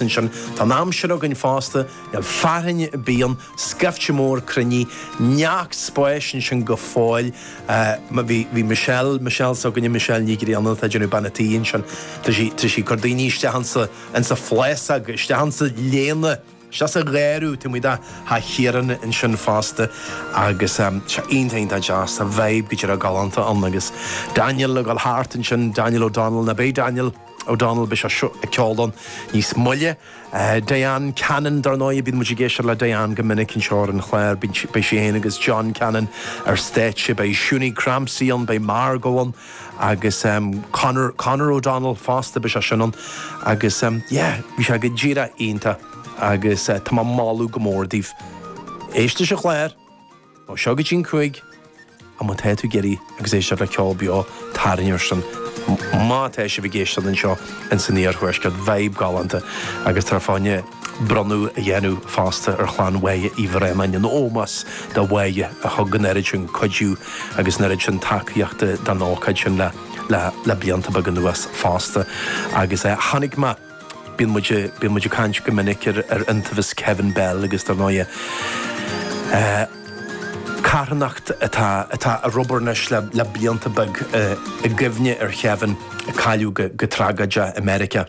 ansin. Tá an aimsir againn fosta, níl fearthainn bíonn scaifte mór cruinnithe, neart spáis ansin go fóill. Bhí Michelle, Michelle s'againne, Michelle Nic Grianna atá ag déanamh Bean a Tí ansin, tá sí tar éis ag cur daoine isteach ansa, ansa phlásóg, isteach ansa léana, isteach sa gharradh, tá muid a' tha Chiaráin ansin fosta agus sea, iontach, iontach deas, tá vibe go deo galánta ann agus Daniel ag dul thart ansin, Daniel O'Donnell, nó beidh Daniel. O'Donnell, beidh seisean ag ceol ann níos moille. Diane Cannon, dar ndóigh, bíonn muid ag éisteacht le Diane go minic anseo ar an chlár, beidh sí féin agus John Cannon ar stáitse, beidh Shunie Crampsey ann, beidh Margo ann agus Conor, Conor O'Donnell fosta, beidh seisean ann agus yeah, bhí sé go díreach iontach agus tá mé ag moladh go mór daoibh éisteacht leis an chlár. Ó seo go dtí'n cúig, a má tá tú ag iarraidh agus éisteacht le ceol beo, tarraing ar sin. Má tá sibh ag éisteacht anseo in san iarthuaisceart, vibe galánta agus tá fáinne bronnadh a dhéanamh fosta ar chlann Moya Ní Bhraonáin in ómós do Mhoya a thug an oiread sin cuidiú agus an oiread sin tacaíochta don ócáid sin le le blianta beaga anuas fosta agus chonaic mé Bíonn muid, bíonn muid ag caint go minic ar, ar iontaobhas Kevin Bell agus dar ndóighe eh, carthanacht atá, atá ar obair anois le, le blianta beaga eh, i gcuimhne ar Kevin, a cailleadh go, go tragóideach i Meiriceá.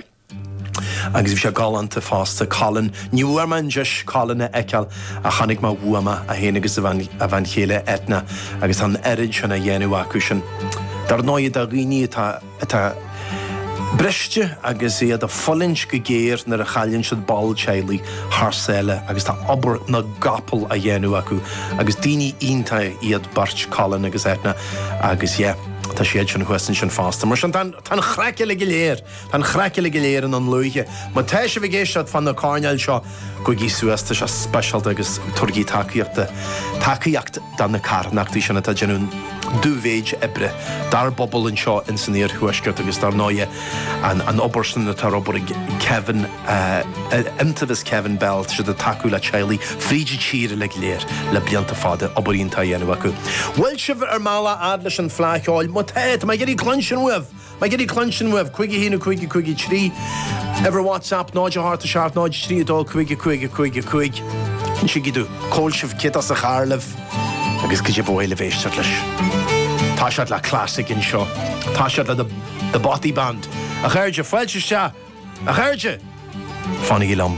Agus bhí sé galánta fosta, Colin, ní bhfuair mé an deis Colin a fheiceáil ach chonaic mé uaim é, é féin agus a bhean, a bhean chéile Eithne, agus tá an oiread sin á dhéanamh acu sin. Dar ndóighe, do dhaoine atá, atá briste agus iad ag fulaingt go géar nuair a chailleann siad ball teaghlaigh thar sáile agus tá obair na gcapall á dhéanamh acu agus daoine iontach iad beirt Colin agus Eithne agus yeah tá siad sin thuas ansin fosta. Mar sin tá tá an chraic uilig go léir, tá an chraic uilig go léir i nDún Lúiche. Má tá sibh ag éisteacht fá na coirnéil seo, gabhaigí suas, tá sé speisialta agus tabharaigí tacaíocht do tacaíocht Do na carthanachtaí sin atá ag déanamh dú mhéid oibre dár bpobal anseo ins an iarthuaisceart agus dar ndóighe an obair sin atá ar obair ag Kevin, Iontaobhas Kevin Bell tá siad ag tacú le teaghlaigh fríd an tír uilig go léir le blianta fada, obair iontach á dhéanamh acu. Bhfuil sibh ar bhur mbealach fhad leis an fhleá cheoil, má tá, tá mé ag iarraidh cluinstin uaibh! Mé ag iarraidh cluinstin uaibh. 551553 ar WhatsApp 087 032 5555 Insígí domh cá bhfuil sibh, caidé is fearr libh agus caidé ba mhaith libh éisteacht leis. Toiseacht le classic anseo. Toiseacht le The Bothy Band. A chairde, fáilte isteach! A chairde! Fanaigí liom.